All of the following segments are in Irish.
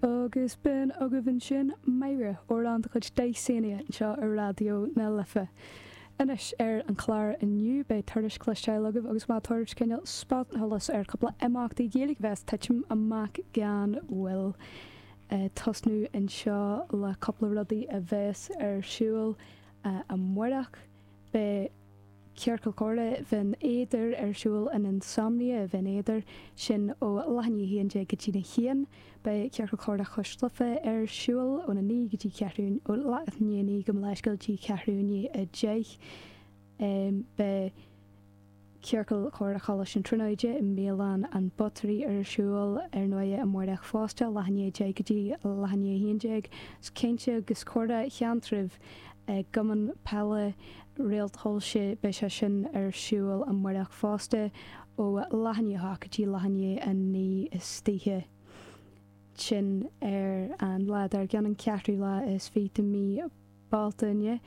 Agus b'in agaibh ansin Máire amhrán de chuid Dysania anseo ar Raidió na Life. Anois ar an chlár inniu beidh tuairisc le cloisteáil agaibh agus mé ag tabhairt cineál spotsolas ar cúpla imeachtaí Gaeilge a bheas ag titim amach gan mhoill tosnú anseo le cúpla rudaí a bheas ar siúl amáireach. Beidh Ciorcal Comhrá Bhinn Éadair ar siúl in Insomnia Bhinn Éadair, sin ó leath i ndiaidh a 11 go dtí na haon. Beidh Ciorcal Comhrá Chois Life ar siúl ón 9 go dtí ceathrú, ó leath i ndiaidh a 9 gabh mo leithscéal go dtí ceathrú i ndiaidh a 10. Beidh. Ciorcal Comhrá Choláiste na Tríonóide i mBialann an Buttery ar siúl ar ndóigh amáireach fosta, leath i ndiaidh a 10 go dtí leath i ndiaidh a 11. Caint agus Comhrá Sheantraibh i gCumann Peile Réalt Shoilse beidh sé sin ar siúl amáireach fosta ó leath i ndiaidh a 8 go dtí leath i ndiaidh a 9 istoíche. Sin ar an lá dár gcionn, an ceathrú lá is fiche de mhí. Bealtaine,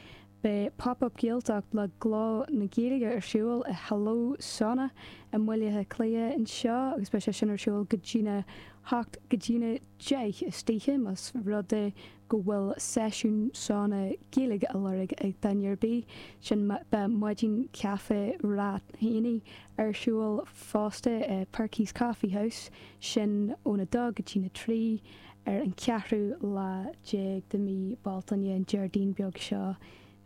beidh Pop Up Gaeltacht le Gleo na Gaeilge ar siúl i Helios Sauna i mBaile Átha Cliath anseo agus beidh sé sin ar siúl go dtí na hocht, go dtí na deich istoíche, más rud é go bhfuil seisiún sauna Gaeilge á lorg ag duine ar bith. Sin beidh Maidin Caife Ráth Éanaigh ar siúl fosta i Perky's Coffee House, sin óna dó go dtí na trí. Ar an cheathrú lá déag de mhí Bealtaine, an Déardaoin beag seo,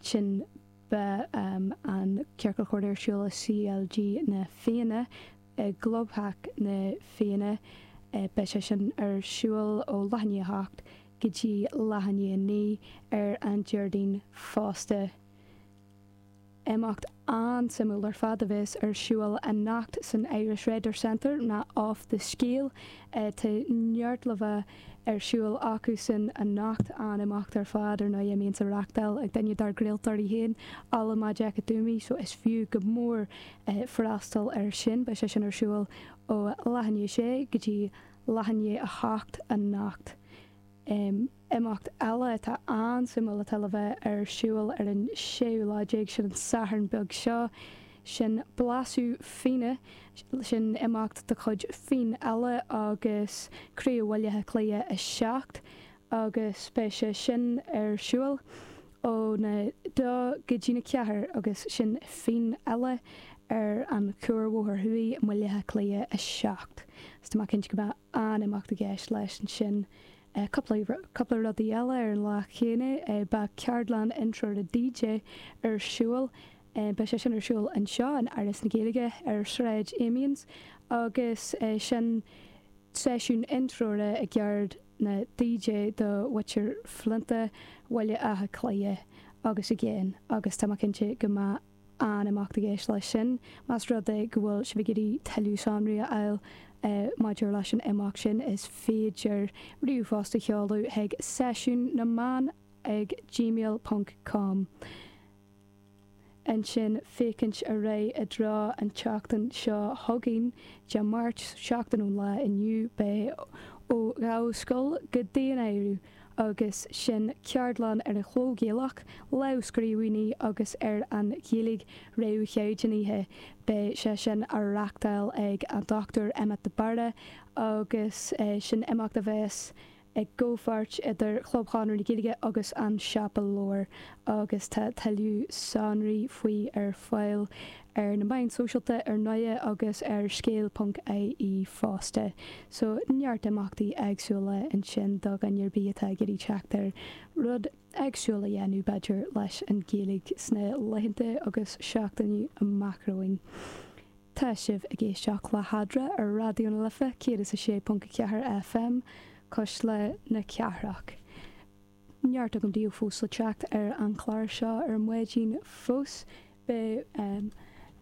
sin beidh an Ciorcal Comhrá ar siúl i CLG Na Fianna, i gclubtheach na Fianna. Beidh sé sin ar siúl ó leath i ndiaidh a hocht go dtí leath i ndiaidh a naoi ar an Déardaoin fosta. Imeacht an-suimiúil ar fad a bheas ar siúl anocht san Irish Writers Centre ná Off the Scéal. Tá neart láimhe ar siúl acusan anocht, an-imeacht ar fad ar ndóigh a mbíonns á reachtáil ag duine dár gcraoltóirí féin, Ola Majekodunmi, so is fiú go mór freastal air sin. Beidh sé sin ar siúl ó leath i ndiaidh a sé go dtí leath i ndiaidh a hocht anocht. Imeacht eile atá an-suimiúil atá le bheith ar siúl ar an séú lá déag, sin an Satharn beag seo, sin Blaiseadh Fíona, sin imeacht de chuid Fíon Eile agus Craobh Bhaile Átha Cliath 7 agus beidh sé sin ar siúl óna dó go dtí na ceathair agus sin Fíon Eile ar an Chuarbhóthar Thuaidh i mBaile Átha Cliath 7. Tá mé cinnte go mbeidh. an imeacht i gceist leis ansin. Cúpla rud eile, ar an lá céanna beidh ceardlann intreora DJ ar siúl. Beidh sé sin ar siúl anseo in Áras na Gaeilge ar Shráid Amiens agus sin seisiún intreora i gceird na DJ do mhuintir Flinta, Bhaile Átha Cliath agus i gcéin agus tá mé cinnte go mbeidh. an imeacht i gceist leis sin. Más rud é go bhfuil sibh ag iarraidh tuilleadh sonraí a fháil maidir leis an imeacht sin, is féidir ríomhphost a sheoladh chuig Seisiún na mBan ag gmail ponc com, ansin féachaint ar aghaidh i dtreo an tseachtain seo chugainn, Dé Máirt, seachtain ón lá inniu, beidh ó Dháibhí Scoil go Dinneen. agus sin ceardlann ar an chló Gaelach, lámhscríbhinní agus ar an Ghaeilge réamhchaighdeánaithe. Beidh sé sin á reachtáil ag an Dr Emmet de Barra agus sin imeacht a bheas i gcomhpháirt idir Chlub Chonradh na Gaeilge agus An Siopa Leabhar agus tá tuilleadh sonraí faoi ar fáil ar na meáin sóisialta ar ndóigh agus ar Scéal.ie fosta. So neart imeachtaí éagsúla ansin do dhuine ar bith atá ag iarraidh teacht ar rud éagsúil a dhéanamh, b'fhéidir, leis an Ghaeilge sna laethanta agus seachtainí amach romhainn. Tá sibh ag éisteacht le hAdhmhaidin ar Raidió na Life 106.4 FM, Cuisle na Cathrach. neart againn daoibh fós le teacht ar an chlár seo ar maidin fós, beidh